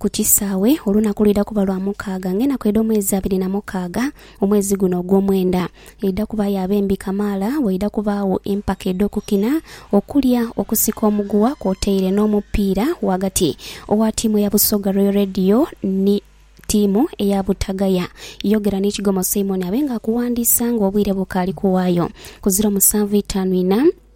Ku kisaawe, olunaku lwidha kuba lwa mukaaga ng'enaku edh'omwezi abiri na mukaaga, omwezi guno ogw'omwenda. Eidha kuba ya bembi kamaala, waidha kubaagho empaka edh'okukina, okulya, okusika omuguwa kwotaire n'omupiira ghagati owa tiimu eya Busoga Royal Radio ni tiimu eya Butagaya. Yogera ni Kigomo Simon abe nga akuwandiisa ng'obwire bukaali kuwaayo. Ku ziro musanvu itaanu inha.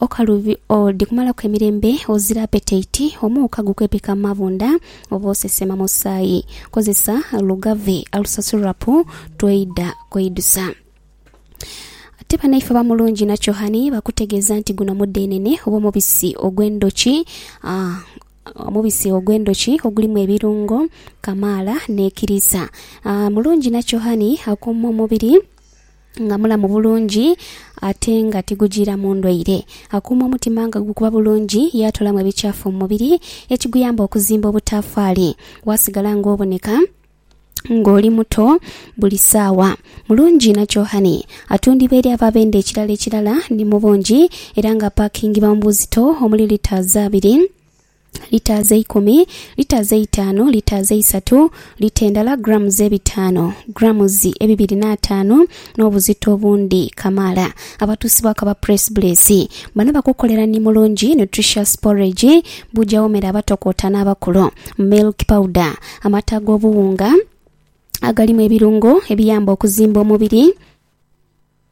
Okalubi, Odi kumalaku emirembe ozira apetaiti, omuuka gukwepeka mu mabunda oba osesema musaayi. Kozesa Lugave Ulcer Syrup tw'oidha kweidusa. Ate banaife aba Mulungi na Chohani bakutegeeza nti guno mudhenene oba omubisi ogw'endhoki ah, omubisi ogw'endhoki ogulimu ebirungo kamaala n'ekiriisa. Ah, Mulungi na Chohani akuuma omubiri. nga mulamu bulungi ate nga tigujiiramu ndwaire. Akuuma omutima nga gukuba bulungi, yaatoolamu ebikyafu mu mubiri ekiguyamba okuzimba obutaafaali. Waasigala ng'oboneka ng'oli muto buli saawa. Mulungi na Johan atundibwa eri abo abenda ekirala ekirala ni mu bungi era ng'apakingibwa mu buzito omuli litres abiri. litres eikumi, litres eitaanu, litres eisatu, lita endala, grams ebitaanu, grams ebibiri n'ataanu, n'obuzito obundi kamaala. Abatuusibwaku aba Press Bliss bano bakukolera ni Mulungi Nutritious Porridge, buja wo mere abatokoota n'abakulu, milk powder, amata ag'obuwunga agalimu ebirungo ebiyamba okuzimba omubiri,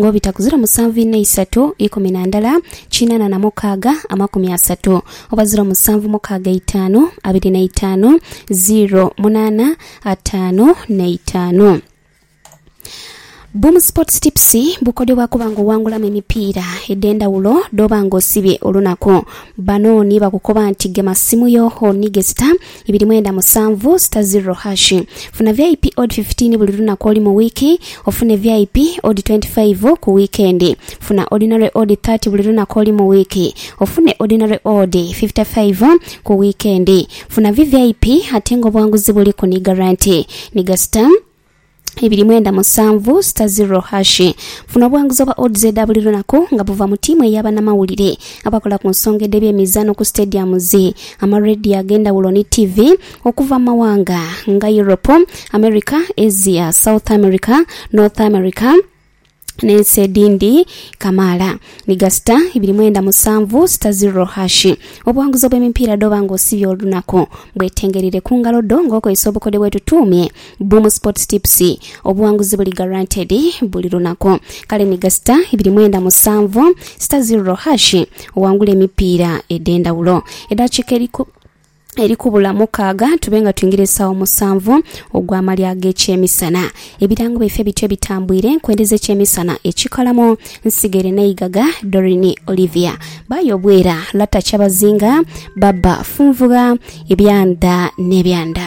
Ng'obita ku ziro musanvu inha isatu ikumi na ndala kinana na mukaaga amakumi asatu oba ziro musanvu mukaaga eitaanu abiri na itaanu ziro munana ataanu na itaanu. Boom Sports Tips bukodyo bwa kuba nga owangulamu emipiira edh'endhawulo dh'oba nga osibye olunaku. Bano ni bakukoba nti gema simu yo onighe sita ibiri mwenda musanvu sita ziro hashi. Funa VIP odi fifitiini buli lunaku oli mu wiiki, ofune VIP odi twenti faivu ku wiikendi. Funa odinale odi thati buli lunaku oli mu wiiki, ofune odinale odi fifita faivu ku wiikendi. Funa VVIP ate nga obwanguzi buliku ni garanti. Ni gasita. ibiri mwenda musanvu sita ziro hashi. Funa obwanguzi obwa Odds edha buli lunaku nga buva mu tiimu ey'abanamawulire abakola ku nsonga edh'ebyemizaano ku stadiums, amarediyo ag'endhawulo ni ttivi okuva mu mawanga nga Europe, America, Asia, South America, North America, n'ensi edhindi kamaala ni gasita ibiri mwenda musanvu sita zirro hashi. Obuwanguzi obw'emipiira dh'oba nga osibye olunaku bwetengereire ku ngalo dho nga okozesa obukodyo bwetutuumye Boom Sports Tips. Obuwanguzi buli guaranteed buli lunaku. Kale ni gasita ibiri mwenda musanvu sita zirro hashi owangule emipiira edh'endhawulo. Edaakiika eri ku. eri kubula mukaaga tube nga twingira esaawa musanvu ogw'amalya ag'ekyemisana. Ebirango byaife bityo bitambwire, Nkwende z'ekyemisana, Ekikalamu, Nsigere n'Eigaga, Doreen Olivia, Bayo Obwera, Lata Kyabazinga, Baba Funvugha, Ebyanda n'Ebyanda.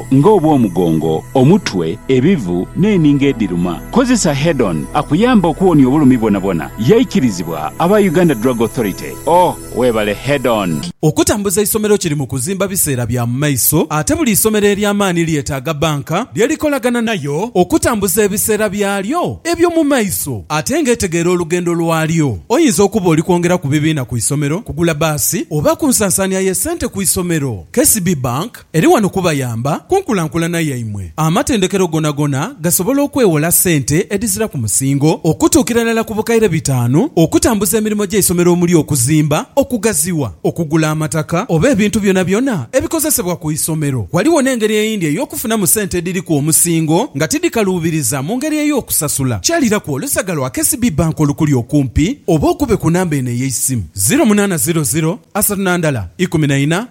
nga obw'omugongo, omutwe, ebivu, n'eninga edhiruma. Kozesa Head-on akuyambe okuwonia obulumi bwonabwona. Yaikirizibwa aba Uganda Drug Authority. Oh, webale Head-on! Okutambuza eisomero kiri mu kuzimba biseera bya mu maiso ate buli isomero ery'amaani lyetaaga bbanka lye likolagana nayo okutambuza ebiseera byalyo eby'omu maiso ate ng'etegeera olugendo lwalyo. Oyinza okuba oli kwongera ku bibiina ku isomero, kugula bbaasi oba ku nsansaania y'essente ku isomero. KCB Bank. Eri wano kubayamba ku nkulankulana yaimwe. Amatendekero gonagona gasobola okwewola sente edhizira ku musingo okutuukira irala ku bukaire bitaanu okutambuza emirimo gy'eisomero omuli okuzimba, okugaziwa, okugula amataka oba ebintu byonabyona ebikozesebwa ku isomero. Ghaligho n'engeri eyindi ey'okufunamu sente edhiri ku omusingo nga tidhikaluubiriza mu ngeri ey'okusasula. Kyaliraku olusaga lwa KCB Bank olukuli okumpi oba okube ku namba eno ey'eisimu, ziro munaana ziro ziro, asatu na ndala, ikumi na ina,